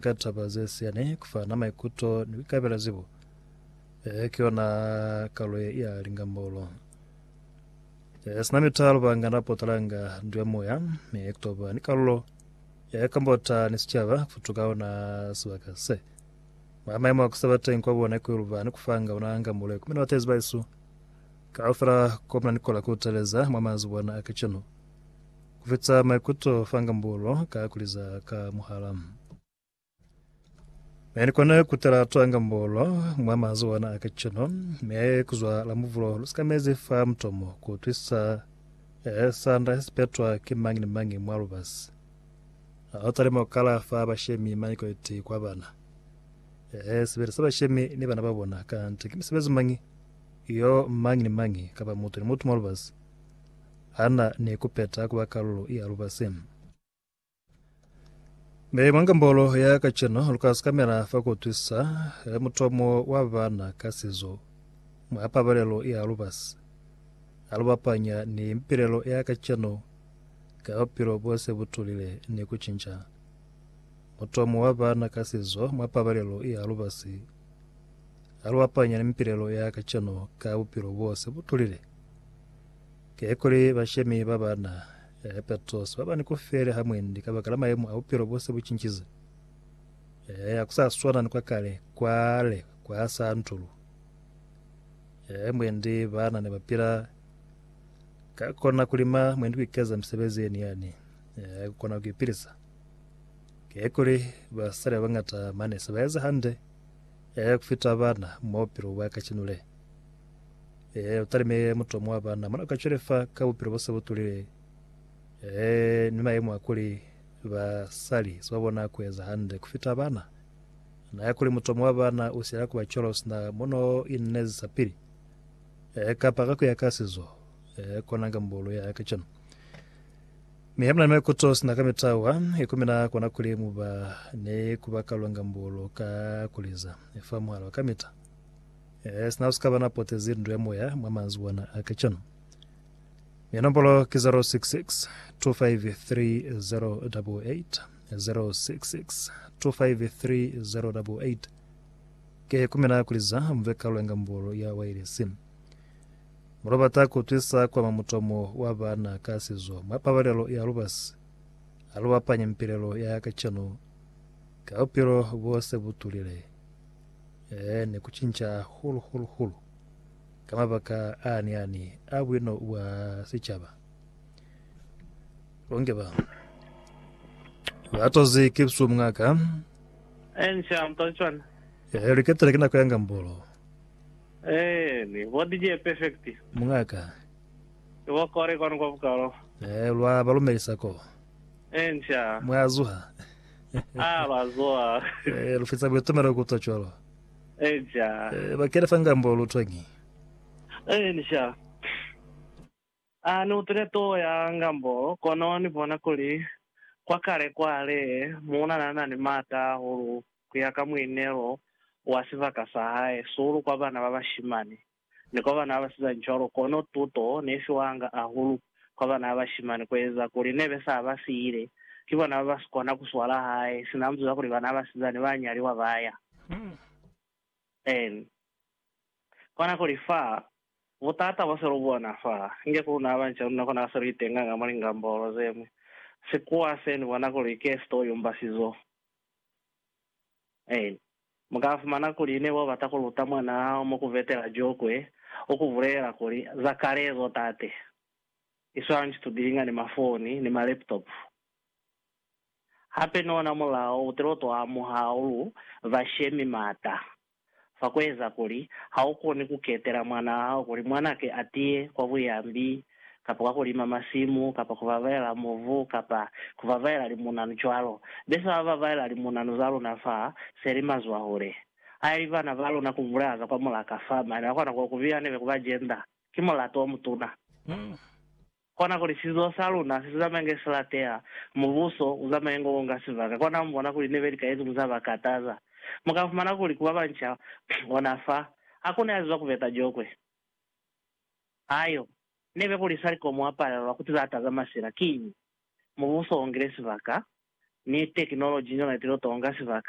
Ka taba ze siani, ku fana maikuto ni ku ikabela zibo ki yona kalo ye ya lingambolo. Sina mitalo, banga na potalanga ndu ya moya mi ku toba ni kalulo ya kambota ni sicaba ku futuka ona sibaka se. Mwa maimo a ku seba teñi kwa bona ku iluba ni ku fanga ona ngambolo ye kumina batezi ba isu kaufela, ko muna ni kola ku teleza mwa manzibwana a kacenu. Kufitisa maikuto fa ngambulo ka kuliza ka muhala. Mi ni kona kutela twa ngambulo mwa manzi ona a kacenu, mi aye kuzwa la muvulo lusikamezi fa mutomo kuutwisisa eh, sanda sesipetwa ki mañi ni mañi mwa lubasi. Ha utalima kukala fa bashemi mañi kwaliti kwa bana. Eh, sibili sa bashemi ni bana babona, kanti ki misebezi mañi yo mañi ni mañi kapa mutu ni mutu mwa lubasi ha na ni ku peta ku ba kalulo ya lubasi. Mi mwa ngambolo ya kacenu, lu ka sikamela fa ku utwisa mutomo wa bana ka sizo mwa pabalelo ya lubasi ha lu bapanya ni mipilelo ya kacenu ka bupilo bo se bu tulile ni ku cinca mutomo wa bana ka sizo mwa pabalelo ya lubasi ha lu bapanya ni mipilelo ya kacenu ka bupilo bo se bu tulile. Kikuli bashemi ba ba na herpetoso ba ba ni ku fele ha mwendi ka baka la mayemo a bupilo bo se bu cincize, ha ku sa swana ni kwa kale, kwale kwa sa ntulu mwendi bana ne ba pila ka kona ku lima mwendi ku ikeza misebezi ye niani ya ku kona ku ipilisa. Kikuli basali ba bañata mane se ba eza hande ku fita bana mwa bupilo bwa kacenu le. Eh, utalime mutu wa bana mwana ka cwele fa ka bupilo bo se butulile. Eh, ni mayemo a kuli ba sali so bona ku eza hande ku fita bana. Na ya kuli mutu wa bana u sila ku ba cwalo sina mono inezi sa pili. Eh, kapa ka ku ya ka sizo. Eh, kona nga mbulu ya ka cana. Mi hamna me kuto sina ka mitawa, ikumina kona kuli mu ba ne ku ba kalonga mbulu ka kuliza. Efa muhala wa kamita. Ee, sina u si ka ba na potezi ndu ya moya mwa manzwi ona a kacwanu. Mi nombolo ki 066 253 088, 066 253 088. Ke ku mina kuli za mu ve kalulo ya ngambolo ya wailesi. Mu lo bata ku twisa ku ama mutomo wa bana ka sizo mwa pabalelo ya lubasi ha lu bapanya mipilelo ya kacwanu ka bupilo bo se bu tulile. Ee, ne ku cinca hahulu-hulu-hulu ka mabaka aani-ani a buino bwa sicaba. Bonke ba ba tozi ki busubu mungaka. Ensha mpa cwana. Ee, liketela ki nako ya ngambolo. Eh, ni bo DJ Perfect. Mungaka. Ni bo Kore kwanu kwa bukalo. Ee, lwa ba lumelisa ko. Ensha. Mwa zuha. A lwa zuha. Eh, lu feza buitumelo ku twa cwalo. Eja. Eh, ba kena fa ngambo lu twañi? Eh, ni sha. A ni utile too ya ngambo, kono ni bona kuli kwa kale kwale, muuna na na ni maata ahulu ku ya ka muinelo wa sibaka sa hae, sihulu kwa bana ba bashimani. ni kwa bana ba basizani cwalo, kono tuto ne fiwanga ahulu kwa bana ba bashimani kueza kuli nebe sa ba siile ki bona ba ba si kona ku swala hae sina mzuza kuli bana ba basizani ba nyaliwa ba ya. Ni kona ku li fa butata bo se lu bona fa inge ku luna banca luna kona ka se lu itenganga mwa lingambolo ze ñwi, sikuwa se ni bona kuli ke sitoyumba sizo. Amen. Mu ka fumana kuli ne bo bata ku luta mwana hao mo ku vetela jokwe, u ku bulelela kuli, Za kale ezo, tate. I swana ni situdilinga ni mafoni ni ma-laptop. Hape ni ona mulao u tilo to amuha, u lu ba shemi mata. fa ku eza kuli ha u koni ku ketela mwanaa hao kuli mwanake a tiye kwa buyambi, kapa kwa ku lima masimu, kapa ku babaela mubu, kapa ku babaela limunanu cwalo. Be sa babaela limunanu za luna fa se li mazwahule. Ha e li bana ba luna ku bulela za kwa mulaka fa, mane ba kona ku ku biha nebe ku ba jenda. Ki mulato o mutuna. Kona kuli sizo sa luna si zamaye nge si lateha, mubuso u zamaye ngo konga sibaka. Kona mu bona kuli nebe lika yezimu za ba kataza. Mu ka fumana kuli ku ba banca, ona fa, ha ku ne a ziba ku beta jokwe. Hayo nebe kuli sali ko mu apalelwa ku tiza taza masila. Kiñi? Mubuso u ngile sibaka, ni tekinoloji ni yona i tilo tonga sibaka.